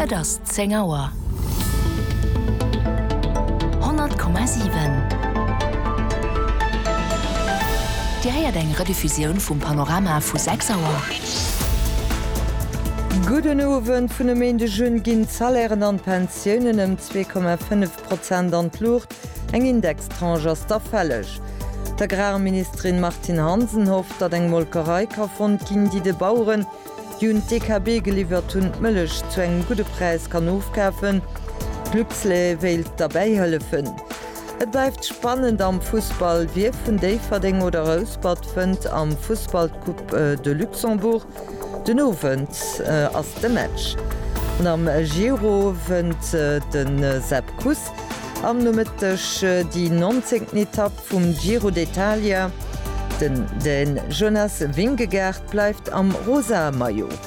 Et ass 10 Auer. 100,7 Dir héiert eng Rediffusioun vum Panorama vu 6 Auer. Gudden Owend. Vun e Méindeg un ginn d'Salairen an d'Pensiounen ëm 2,5 Prozent an d'Luucht. Eng Indextranche ass da fälleg. D'Agrarministerin Martine Hansen hofft, datt eng Molkerei ka fonnt ginn, déi de Baueren, déi un d'DKB geliwwert hunn, d'Mëllech zu engem gudde Präis kann ofkafen. Luxlait wéilt derbäi hëllefen. Et bleift spannend am Fussball, Wie vun Déifferdeng oder Rouspert fënnt am Fussball d'Coupe de Luxembourg? Den Owend ass de Match. An am Giro wënnt de Sepp Kuss am Nomëtteg déi nonzéngten Etapp vum Giro d'Italia. Den Dän Jonas Vingegaard Bleift am rosa Maillot.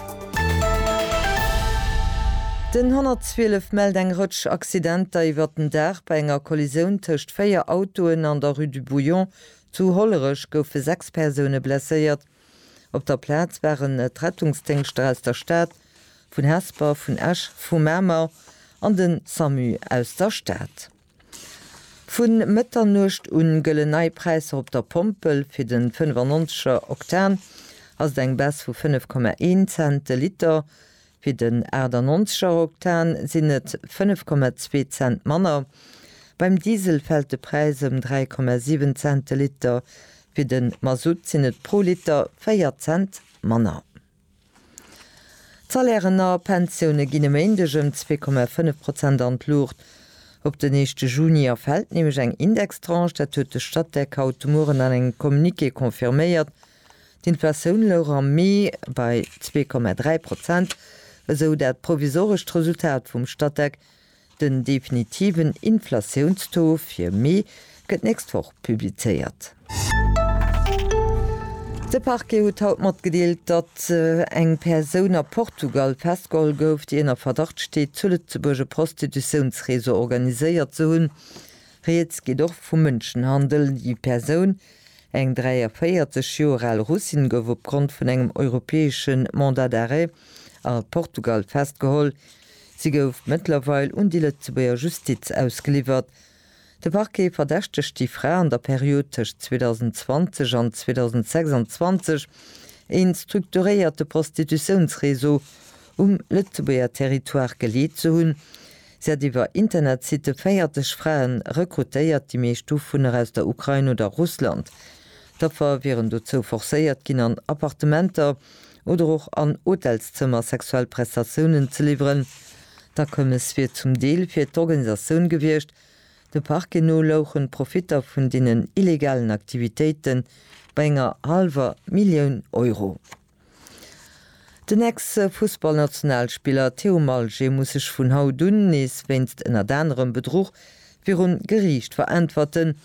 Den 112 mellt eng Rëtsch Accidenter iwwert den Dag. Bei enger Kollisioun tëscht véier Autoen an der Rue du Bouillon zu Hollerech goufe sechs Persoune blesséiert. Op der Plaz waren d'Rettungsdéngschter aus der Stad, vun Hesper, vun Esch, vu Mamer an de Samu aus der Stad. Vu Mëtternuecht un gëllen nei Präisser op der Pompel. Fir den 95 er Oktan ass et eng Baisse vu 5,1 Cent de Liter. Fir den 98 er Oktan sinn et 5,2 Cent manner. Beim Diesel fält de Präis ëm 3,7 Cent de Liter. Fir den Masutt sinn et pro Liter 4 Cent manner. D'Salairen a Pensioune ginn e Méindeg ëm zwee Komma fënnef Prozent an d'Luucht. Op den éischte Juni erfält nämlech eng Indextranche. Dat huet de Statec haut de Mueren an engem Communiqué confirméiert. D'Inflatioun louch am Mee bei zwee Komma dräi Prozent, esou dat provisorescht Resultat vum Statec, Den definitiven Inflatiounstaux fir Mee gëtt d'nächst Woch publizéiert. De Parquet huet haut matgedeelt, datt eng Persoun a Portugal festgeholl gouf, déi ënner Verdacht steet, zu Lëtzebuerg e Prostitutiounsreseau organiséiert ze hunn. Rieds geet och vu Mënschenhandel. Déi Persoun, eng 43 Joer al Russin, gouf opgrond vun engem europäesche Mandat d'arrêt a Portugal festgeholl. Si gouf mëttlerweil un déi Lëtzebuerger Justiz ausgeliwwert. De Parquet verdächtegt déi Fra an der Period tëscht 2020 an 2026 ee strukturéierte Prostitutiounsreseau um Lëtzebuerger Territoire geleet ze hunn. Si hat iwwer Internetsitte 40 Frae rekrutéiert, déi meescht dovunner aus der Ukrain oder Russland. D'Affer wieren dozou forcéiert ginn an Appartementer oder och an Hotelszëmmer sexuell Prestatiounen ze liwweren. D'Akommes wier zum Deel fir d'Organisatioun gewiescht. De Parquet no louchen d'Profitter vun deenen illegalen Aktivitéite bei enger hallwer Millioun Euro. Den Ex-Fussballnationalspiller Theo Malger muss sech vun haut un nees wéinst ënnert anerem Bedruch, Virun Geriicht veräntwerten.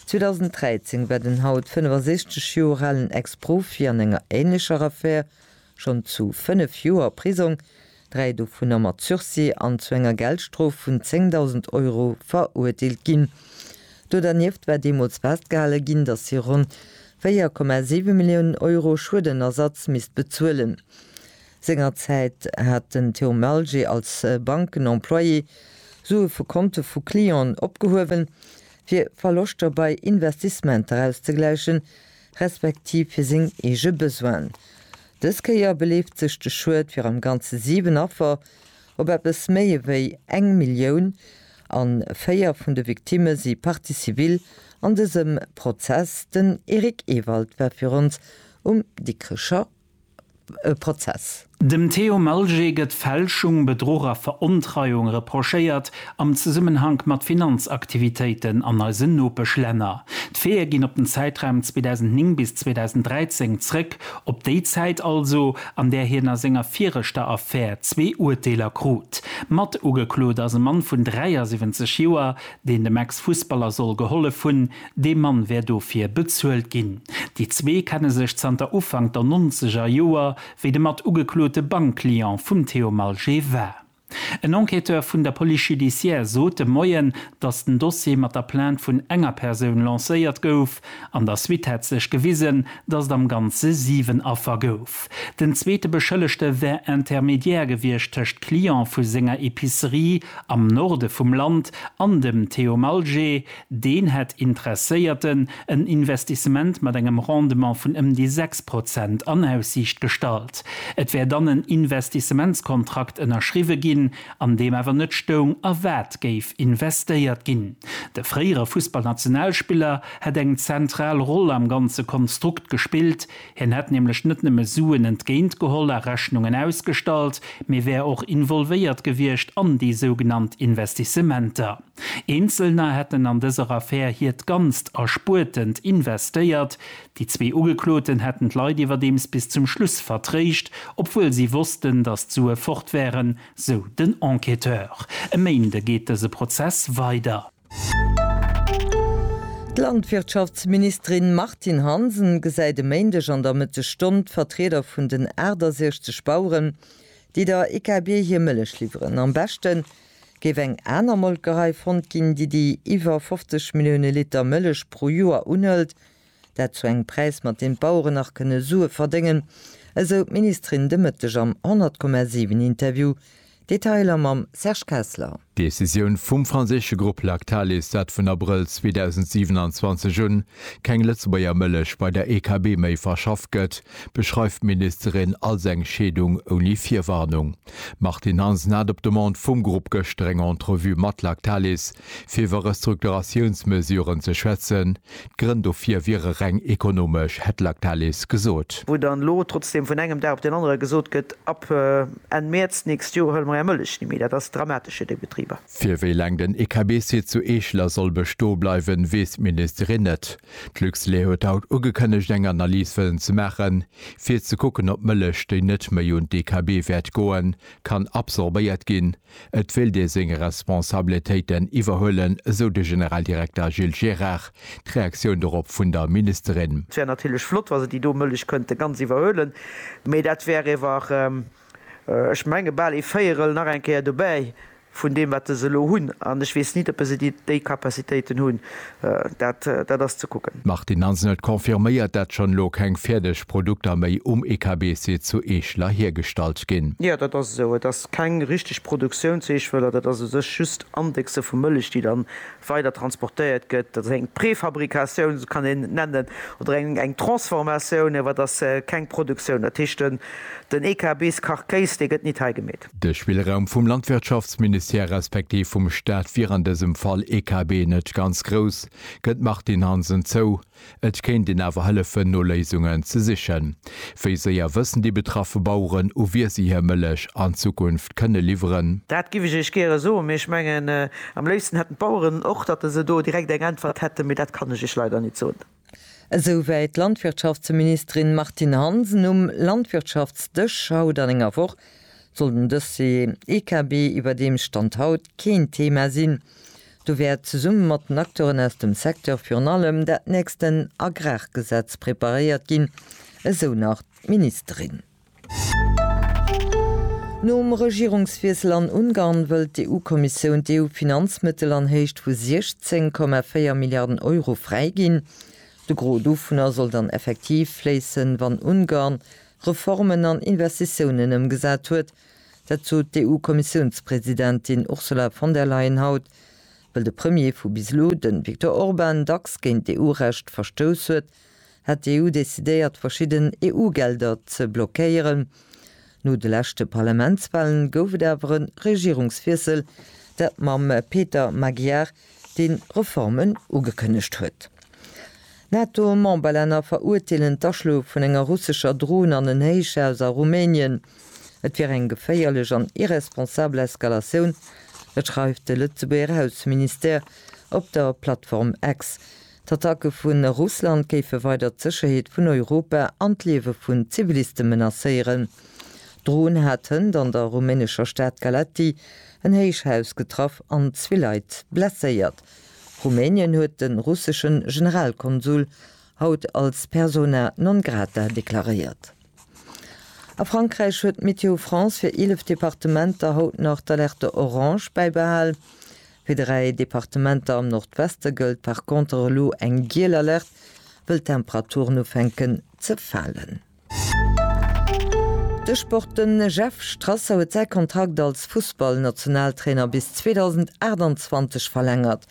2013 war den haut 65 Joer alen Ex-Profi an enger änlecher Affär schonn zu fënnef Joer Prisong, dräi dovunner mat Sursis, an zu enger Geldstrof vun 10.000 Euro verurteelt ginn. Do dernieft war deemools festgehale ginn, datt hie ronn 4,7 Milliounen Euro Schuedenersatz misst bezuelen. Sengerzäit hat den Théo Malger als Bankenemployé Sue vu Konte vu Clienten opgehuewen, fir Verloschter bei Investissementer auszegläichen, respektiv fir seng eege Besoinen. Dës Kéier beleeft sech de Schued fir am Ganze 7 Affer op eppes méi ewéi eng Millioun an 4 vun de Victimme si Partie civile an dësem Prozess. Den Eric Ewald war fir ons um Dikricher Prozess. Dem Théo Malger gëtt Fälschung, Bedruch a Verontreiung reprochéiert am Zesummenhank mat Finanzaktivitéiten an eisen Nopeschlänner. D'Feeë ginn op den Zäitraum 2009 bis 2013 zréck, op déi Zäit also, an där hien a senger viregter Affär zwee Urteeler krut. Matugeklot ass e Mann vun 73 Joer, deen dem Ex-Fussballer soll gehollef hunn, Dee Mann wär dofir bezuelt ginn. Déi zwee kenne sech zanter Ufank der nonzeger Joer, wéi de mat ugeklote Bankclient vum Theo Malgé war. En Enquêteur vun der Police judiciaire sot de Moien, datt den Dossier mat der Plainte vun enger Persoun lancéiert gouf. An der Suite hätt sech gewisen, datt et am Ganze 7 Affer gouf. Den zweete Beschëllegte wär Intermédiaire gewiescht tëscht Client vu senger Epicerie am Norde vum Land an dem Theo Malgé, Deen hätt Interesséierten en Investissement mat engem Rendement vun ëm déi 6 Prozent an Aussiicht gestallt. Et wär dann en Investissementskontrakt ënnerschriwwe ginn, an deem awer net stoung, a wat géif investéiert ginn. De fréiere Fussballnationalspiller hätt eng zentral Roll am ganze Konstrukt gespillt. Hien hätt nämlech net nëmme Suen entgéint geholl a Rechnungen ausgestallt, mee wär och involvéiert gewiescht an déi sougenannt Investissementer. Eenzelner hätten an dëser Affär hiert ganzt Erspuertent investéiert. Déi zwee Ugekloten hätten d'Leit iwwerdeems bis zum Schluss vertréischt, obwuel si wossten, datt d'Sue fort wären, sou den Enquêteur. E Méinde geet dëse Prozess weider. D'Landwirtschaftsministerin Martine Hansen gesäit e Méindeg an der Mëttesstonn d'Vertrieder vun den 68 Baueren, déi der IKB hir Mëllech liwweren. Am beschten Géif eng aner Molkerei fonnt ginn, déi déi iwwer 50 Millioune Liter Mëllech pro Joer unhëlt, dat zu engem Präis, mat deem d'Baueren nach kënne Sue verdéngen, esou d'Ministerin de Mëtteg am 100, 7 Interview. Detailer mam Serge Kessler. D'Decisioun vum franséische Grupp Lactalis, dat vun Abrëll 2027 un keng Lëtzebuerger Mëllech bei der EKB méi verschafft gëtt, beschreift d'Ministerin als eng Scheedung ouni Virwarnung. D'Martine Hansen hat op Demande vum Grupp gëschter eng Entrevue mat Lactalis, fir iwwer Restrukturatiounsmesuren ze schwätzen. D'Grënn dofir wiere reng ekonomesch, hätt Lactalis gesot. Wou dann elo trotzdeem vun engem Dag op den anere gesot gëtt, ab Enn Mäerz d'nächst Joer huele mer är Mëllech ni méi, dat ass dramatesch fir déi Betriber. Fir wéi laang den EKB-Site zu Eeschler soll bestoe bleiwen, weess d'Ministerin net. D'Luxlait huet haut ugekënnegt eng Analys wëllen ze maachen. Fir ze kucken op Mëllech déi net méi un d'EKB wäert goen, kann absorbéiert ginn. Et wéilt ee seng Responsabletéiten iwwerhuelen, esou de Generaldirekter Gilles Gérard. D'Reaktioun dorop vun der Ministerin. Et wär natierlech flott, wa se déi do Mëllech kënnte ganz iwwerhuelen, mee dat wär iwwer. Ech menge bal ee Véierel nach eng Kéier dobäi vun deem, wat se elo hunn. An ech weess nit, oppe se déi Capacitéiten hunn. Dat ass ze kucken. D'Martine Hansenet confirméiert, dat schonn elo keng fäerdeg Produkter méi um EKB-Site zu Eeschler hiergestallt ginn. Jo, dat ass esou. Et ass keng richteg Produktioun zu Eeschwëller. Dat ass u sech just Indexe vu Mëllech, déi dann weider transportéiert gëtt, dat ass eng Préfabricatioun, esou kann een et nennen, oder eng Transformatioun, awer et ass keng Produktioun. Dat heescht, den EKBs Carcase, dee gëtt nit hei gemeet. De Spillraum vum Landwirtschaftsministère respektiv vum Staat wier an dësem Fall, EKB, net ganz grouss, gëtt d'Martine Hansen zou. Et kéint een awer hëllefen no Léisungen ze sichen. Wéi séier wëssen déi betraffe Baueren, u wie si hir Mëllech an Zukunft kënne liwweren? Dat giff ech Iech gäre soen, mee ech mengen, am léifsten hätten d'Baueren och, datt se do direkt eng Äntwert hätten, mee dat kann ech Iech leider nit soen. Esou wéi d'Landwirtschaftsministerin Martine Hansen um Landwirtschaftsdësch haut an enger Woch, soll den Dossier EKB iwwerdeems Stand haut keen Thema sinn. Do wäert zesumme mat den Acteuren aus dem Secteur virun allem dat nächsten Agrargesetz preparéiert ginn, esou nach d'Ministerin. Nom Regierungswiessel an Ungarn wëllt d'EU-Kommissioun d'EU-Finanzmëttel an Héicht vu 16,4 Milliarden Euro fräiginn. De Gros dovunner soll dann effektiv fléissen, wann Ungarn Reformen an Investitiounen ëmgesat huet, Dat sot d'EU-Kommissiounspresidentin Ursula von der Leyen haut, wëll de Premier vu bis elo, de Viktor Orban, dacks géint d'EU-Recht verstouss huet, hätt d'EU decidéiert, verschidden EU-Gelder ze blockéieren. No de leschte Parlamentswahlen gouf et awer e Regierungswiessel, dat mam Peter Magyar dee Reformen ugekënnegt huet. NATO-Memberlänner verurteelen d'Aschloe vun enger russescher Dron an en Héichhaus a Rumänien. Et wier eng geféierlech an irresponsabel Eskalatioun, dat schreift de Lëtzebuerger Ausseministère op der Plattform X. D'Attacke vu Russland géife weider d'Sécherheet vun Europa an d'Liewe vun Ziviliste menacéieren. D'Droun hat hënt an der rumänescher Stad Galaţi en Héichhaus getraff an zwee Leit blesséiert. Rumänien huet de russeschen Generalkonsul haut als persona non grata deklaréiert. A Frankräich huet Météo France fir 11 Departementer haut nach d'Alerte orange bäibehal. Fir dräi Departementer am Nordweste gëllt par conter elo eng giel Alert, wëll d'Temperaturen ufänken ze falen. De Sport, De Jeff Strasser huet säi Kontrakt als Fussballnationaltrainer bis 2028 verlängert.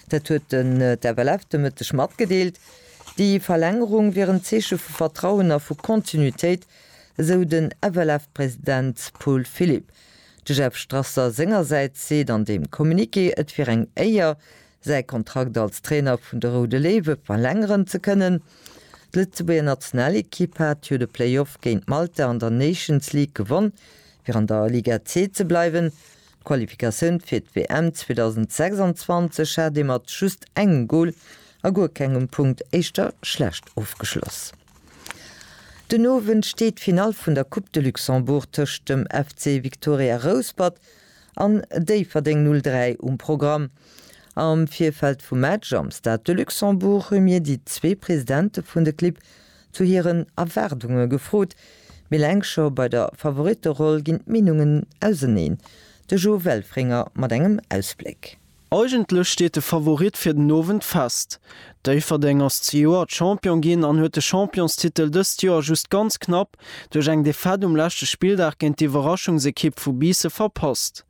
Dat huet den FLF de Mëtteg matgedeelt. Déi Verlängerung wier en Zeeche vu Vertrauen a vu Kontinuitéit, esou den FLF-President Paul Philipp. De Jeff Strasser sengersäits seet an deem Communiqué, et wier eng Éier, säi Kontrakt als Trainer vun de Roude Léiwe verlängeren ze kënnen. D'Lëtzebuerger Nationalekipp hat jo de Playoff géint Malta an der Nations League gewonn, fir an der Liga C ze bleiwen. D'Qualifikatioun fir d'WM 2026 hat ee mat just engem Gol a guer kengem Punkt éischter schlecht ofgeschloss. Den Owend steet d'Finall vun der Coupe de Luxembourg tëscht dem FC Victoria Rouspert an Déifferdeng 03 um Programm. Am Virfeld vum Match am Stade de Luxembourg hu mir déi zwee Presidente vun de Clibb zu hiren Erwaardunge gefrot. Mee eleng scho bei der Favoritteroll ginn d'Meenungen auseneen. De Jo Welfringer mat engem Ausbléck. Eigentlech steet de Favorit fir den Owend fest. Déifferdeng ass zejoert Champion ginn an huet de Championstitel dëst Joer just ganz knapp duerch eng Defaite um leschte Spilldag géint d'Iwwerraschungsekipp vu Biisse verpasst.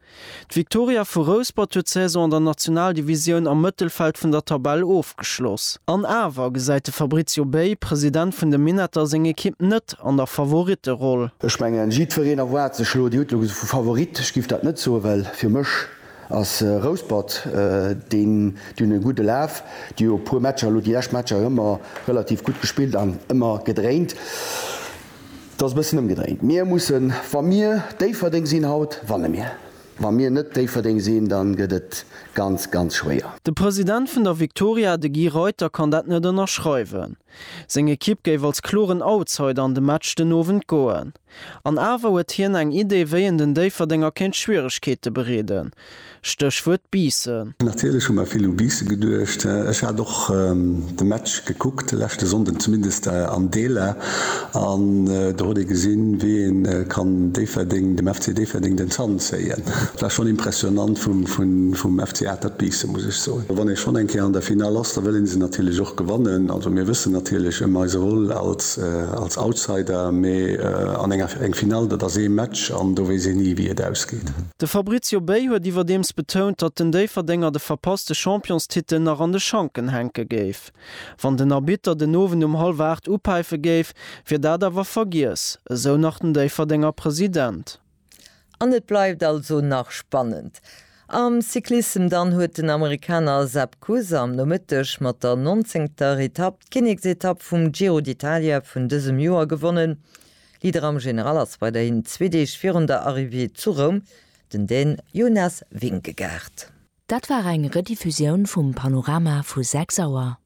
D'Viktoria vu Rouspert huet d'Saison an der Nationaldivisioun am Mëttelfeld vun der Tabell ofgeschloss. An awer gesäit de Fabrizio Bey, President vun de Minetter, seng Ekipp net an der Favoritteroll. Ech mengen, jiddwereen erwaart sech elo, Dir hutt elo vu Favorit, ech giff dat net soen, well fir mech Ass Rouspert deen dunn e gudde Laf, déi hu e puer Matcher elo déi lescht Matcher ëmmer relativ gutt gespillt an ëmmer gedréint. Et ass e bëssen ëmgedréint. Mir mussen, wa mir Déifferdeng sinn haut, wanne mir. Wa mir net Déifferdeng sinn, da gëtt et ganz, ganz schwéier. De President vun der Viktoria, de Guy Reuter, kann dat net ënnerschreiwen. Seng Ekipp géif als kloren Outsider an de Match den Owend goen. An awer huet hien eng Idee, wéi een den Déifferdenger kéint Schwieregkeete bereeden, Stéchwuert Biissen. Natierlech hu mer vill u Biissen geduecht. Ech hat och de Match gekuckt de leschte Sonnden, zumindest an Deeler, an do huet ee gesinn, wéi ee kann Déifferdeng, dem FC Déifferdeng den Zant zéien. Et war schonn impressionant vum FC Atert Biissen, muss ech soen. Wann ee schonn eng Kéier an der Finall ass, da wëll ee se natierlech och gewannen. Also mir wëssen natierlech ëm eise Rôle als Outsider, mee an enger eng Finall, dat ass ee Match an do weess een ni, wéi et ausgeet. De Fabrizio Bey huet iwwerdeems betount, datt den Déifferdenger de verpasste Championstitel nach an de Schanken hänke géif. Wann den Arbitter den Owend um hallwer 8 upäife géif, wier dat awer vergiess, esou nach den Déifferdenger President. An et bleift also nach spannend am Cyclissem. Dann huet den Amerikaner Sepp Kuss am Nomëtteg mat der nonzéngter Etapp d'Kinneksetapp vum Giro d'Italia vun dësem Joer gewonnen. Leader am General ass weiderhin zwee Deeg virun der Arrivée zu Roum den Dän Jonas Vingegaard. Dat war eng Rediffusioun vum Panorama vu 6 Auer.